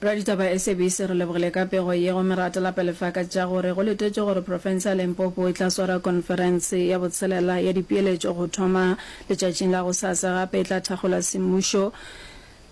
Raditaba SABC re lebogile ka pego ye go Merata Lapelefa ka tša gore go letetšwe gore profense ya Limpopo e tla swara konferense ya botshelela ya dipeeletšo go thoma letšatšing la gosasa gape e tla thakgola semmušo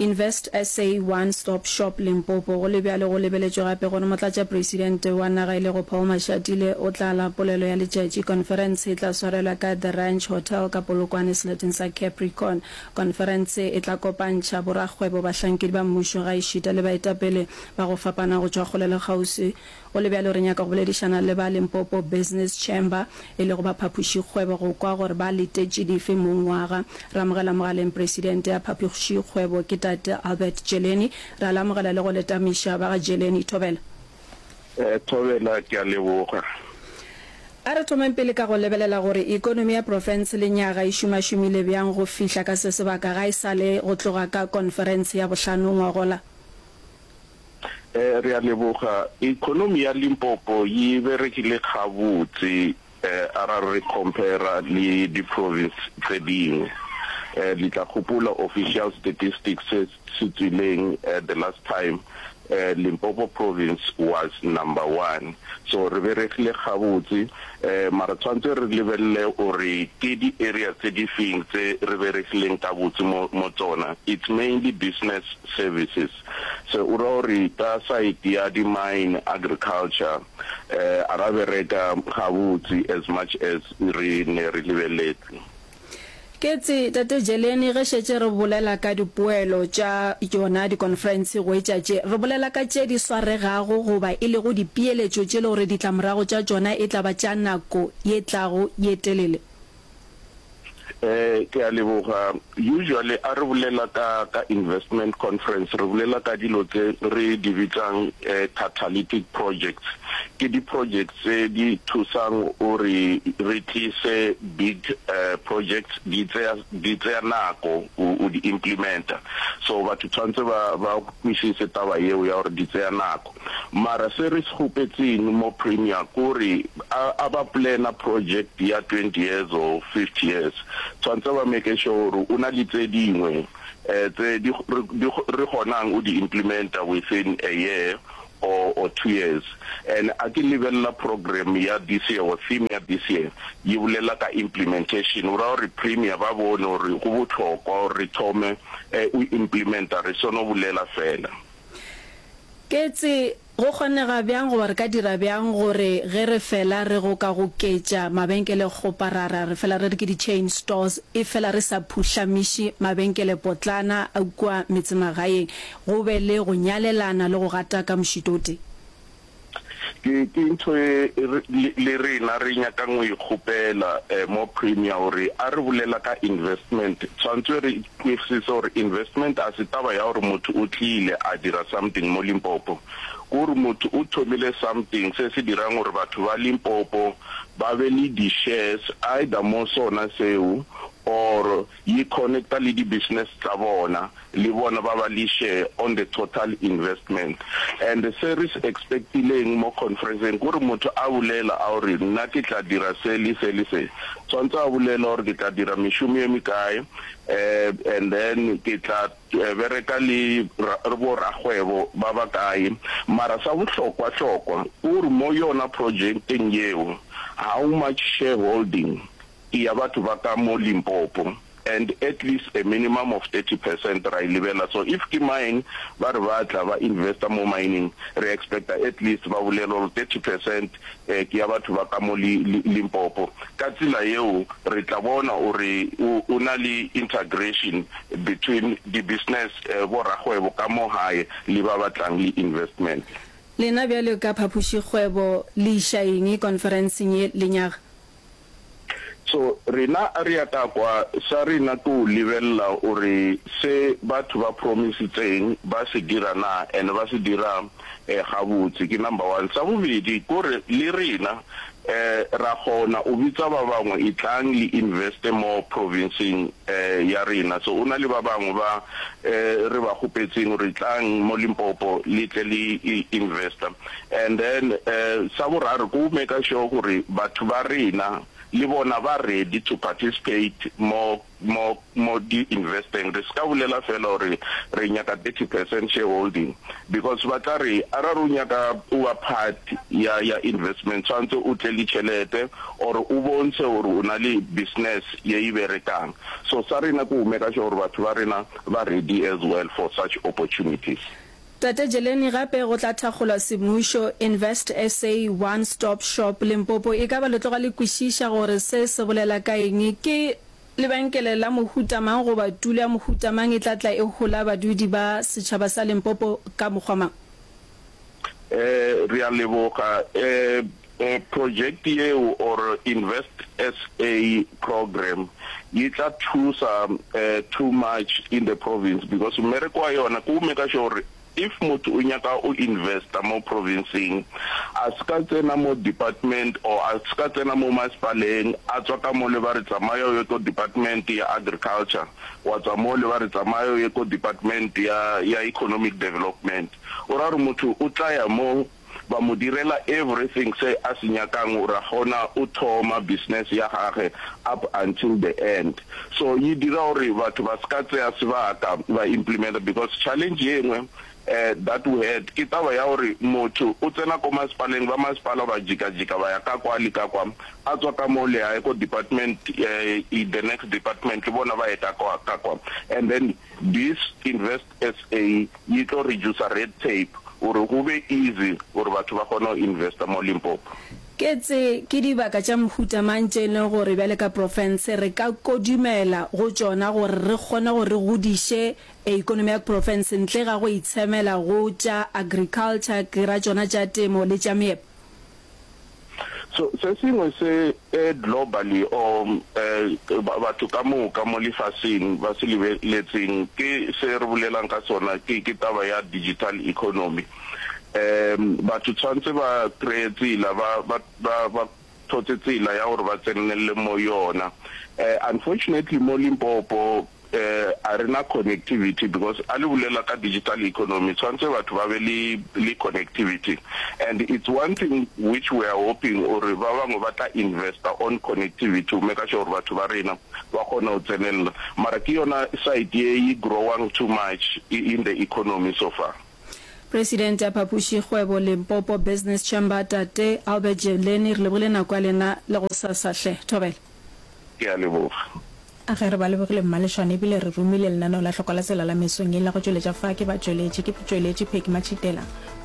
Invest SA One Stop Shop Limpopo go le bjalo go lebeletšwe gape gore Motlatšapresidente wa naga e lego Paul Mashatile o tla la polelo ya letšatši konferense e tla swarelwa ka The Ranch Hotel ka Polokwane seleteng sa Capricorn Konferense e tla kopantšha borakgwebo, bahlankedi ba mmušo gaešita le baetapele ba go fapana go tšwa kgole le kgauswi. Go le bjalo, re nyaka go boledišana le ba Limpopo Business Chamber, e lego ba phapošikgwebo go kwa gore ba letetše dife mongwaga. Re amogela mogaleng Presidente ya Phapošikgwebo, ke Tate Albert Jeleni. Re a le amogela le go letamiša ba ga Jeleni. Thobela. Thobela, ke a leboga. A re thomeng pele ka go lebelela gore ekonomi ya profense le nyaga e šomašomile bjang go fihla ka se sebaka ga e sa le go tloga ka konferense ya bohlano ngwagola. Re a leboga. Ekonomi ya Limpopo yi berekile gabotse. A ra re compare-ra le di province tse dingwe, le tla gopola official statistics se se tswileng the last time, Limpopo province was number one. So re beregile gabotse, mara tshwantse re lebelele gore ke di areas tse di feng tse re beregileng ka botse mo mo tsona, it's mainly business services. Se o ra gore ka side ya di mine, agriculture, Eh, a ra bereka gabotse as much as re ne re lebeletse. Ketse, Tate Jeleni, ge šetše re bolela ka dipoelo tša yona dikonferense go etša tše, re bolela ka tše di swaregago goba e lego dipeeletšo tše le gore ditlamorago tša tšona e tla ba tša nako ye tlago ye telele. Eh ke a leboga. Usually a re bolela ka ka investment conference re bolela ka dilo tse re di bitsang catalytic projects. Ke di projects tse di thusang gore re tlise big projects di tseya di tseya nako go di implementa. So batho tshwantse ba ba kwisise taba eo ya gore di tseya nako. mara se re se kgopetseng mo Premier kore a a ba planner project ya twenty years or fifty years tshwantse ba make sure gore o na le tse dingwe um tse di di re kgonang o di implementa within a year or or two years and a ke lebelela program ya this year or theme ya this year yi bolela ka implementation o ra gore Premier ba bone gore go botlhokwa gore re thome um o implementa re sono bolela fela. Ketse, Go kgonega bjang goba re ka dira bjang gore ge re fela re go ka goketša mabenkelekgoparara, re fela re re ke di-chain stores, efela re sa phuhlamiši mabenkelepotlana a kua metsemagaeng, go be le go nyalelana le go gata ka mošito o tee? Ke, ke ntho e re, le, le rena re nyakang go e kgopela, eh, mo Premier, gore a re bolela ka investment, tshwantswe re kwersise gore investment a se taba ya gore motho o tlile a dira something mo Limpopo. Ke gore motho o thomile something se se dirang gore batho ba Limpopo ba be le di-shares either mo sona seo or Ye connecta le di business tsa bona le bona ba ba le share on the total investment and se re se expectileng mo conferenceng kore motho a bulela a gore nna ke tla dira se le se le se tshwantse a bulela gore ke tla dira mešomo ye mekae um and then ke tla bereka le bo rakgwebo ba ba kae mara sa bohlokwa hlokwa kore mo yona projecteng yeo how much shareholding ke ya batho ba ka mo Limpopo and at least a minimum of thirty percent ra e lebella so if ke mine ba re ba tla ba investa mo mining re expecta at least ba bolelwa gore thirty percent ke ya batho ba ka mo Limpopo ka tsela yeo re tla bona gore o na le integration between di business bo rakgwebo ka mo gae le ba ba tlang le investment. Lena bjalo ka phapošikgwebo le iša eng konferenseng ye lenyaga? So rena rea ka kwa sa rena ko lebelela gore se batho ba promisitseng ba se dira na and ba se dira eh gabotse ke number one sa bobedi kore le rena eh ra kgona o bitsa ba bangwe e tlang le investe mo provinceng eh ya rena so ona le ba bangwe ba eh re ba kgopetseng gore tlang mo Limpopo le tle le investa And then um sa boraro ke go maker sure gore batho ba rena le bona ba ready to participate mo mo mo di investeng re se ka bolela fela gore re nyaka thirty percent shareholding because ba tla re a ra re o nyaka o ba part ya ya investment tshwanetse o tle le tšhelete or o bontshe gore o na le business ye e berekang so sa rena ke go maker sure gore batho ba rena ba ready as well for such opportunities. Tate Jeleni gape go tla thakgolwa semmušo, Invest SA, One Stop Shop, Limpopo e ka ba le tloga le kwešiša gore se se bolela ka eng, ke lebenkele la mohuta mang goba tulo ya mohuta mang e tla tla e hola badudi ba setšhaba sa Limpopo ka mokgwa mang? Re a leboga. Project yeo or Invest SA program yi tla thusa too much in the province because mmereko wa yona ke go maker sure gore if motho o nyaka o investa mo provinceng a se ka tsena mo department or a se ka tsena mo masepaleng a tswa ka mole ba re tsamaya o ye ko department ya agriculture wa tswa mole ba re tsamaya o ye ko department ya ya economic development o ra gore motho o tla ya mo ba mo direla everything se a se nyakang o ra gona o thoma business ya gage up until the end so yi dira gore batho ba se ka tseya sebaka ba implementa because challenge ye ngwe eh that we had ke taba ya gore motho o tsena ko masepaleng ba masepala ba jika jika ba ya ka kwa le ka kwa a tswa ka mo le ya ko department eh the next department le bona ba ye ka kwa ka kwa and then this invest SA yi tlo reducer red tape gore go be easy gore batho ba kgone go investa mo Limpopo. Ke tse ke dibaka tša mohuta mang tše e leng gore bjale ka profense re ka kodumela go tšona gore re kgone gore re godiše ekonomi ya profense ntle ga go itshemela go tša agriculture, ke ra tšona tša temo le tša meepo? So, se sengwe se e globally or e batho ka moka mo lefaseng ba se lebeletseng ke se re bolelang ka sona ke ke taba ya digital economy. E batho tshwantse ba kreye tsela ba ba ba thotse tsela ya gore ba tsenelele mo yona. E unfortunately mo Limpopo Eh a rena connectivity because a le bulela ka digital economy tshwantse batho ba be le le connectivity and it's one thing which we are hoping gore ba bangwe ba tla investa on connectivity go meka sure gore batho ba rena ba kgone go tsenelela mara ke yona side ye e growang too much in the economy so far. Presidente ya Phapoši Kgwebo Limpopo Business Chamber Tate Albert Jevleni re lebogile nako ya lena le go sasa hle. Thobela. Ke a leboga. A ge re ba lebogile mmalešwane e bile re romile lenaneo la hloko la tsela la mesong ye la go tšweletša fa ke ba tšweletše ke tšweletše Peggy Matšhitela,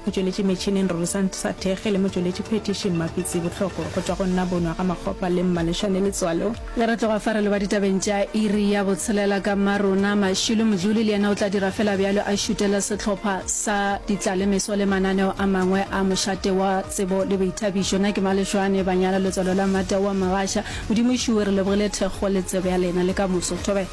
motšweletši metšhineng Rorisang sa Thekge le motšweletši phethiši Mmapitsi Bohloko go tšwa go nna Bonwa ga Makgopa le Mmalešwane Letswalo. Ge re tloga fa re leba ditabeng tša iri ya botshelela ka mmarona, Mashilo Mojuli le yena o tla dira fela bjalo a šutela sehlopha sa ditlalemeso le mananeo a mangwe a mošate wa tsebo le boithabišo. Na ke Malešwane, Banyana, Letswalo la Mmata wa Magasha, Modimo ešuwe re lebogile thekgo le tsebo ya lena le ka moso. Thobela.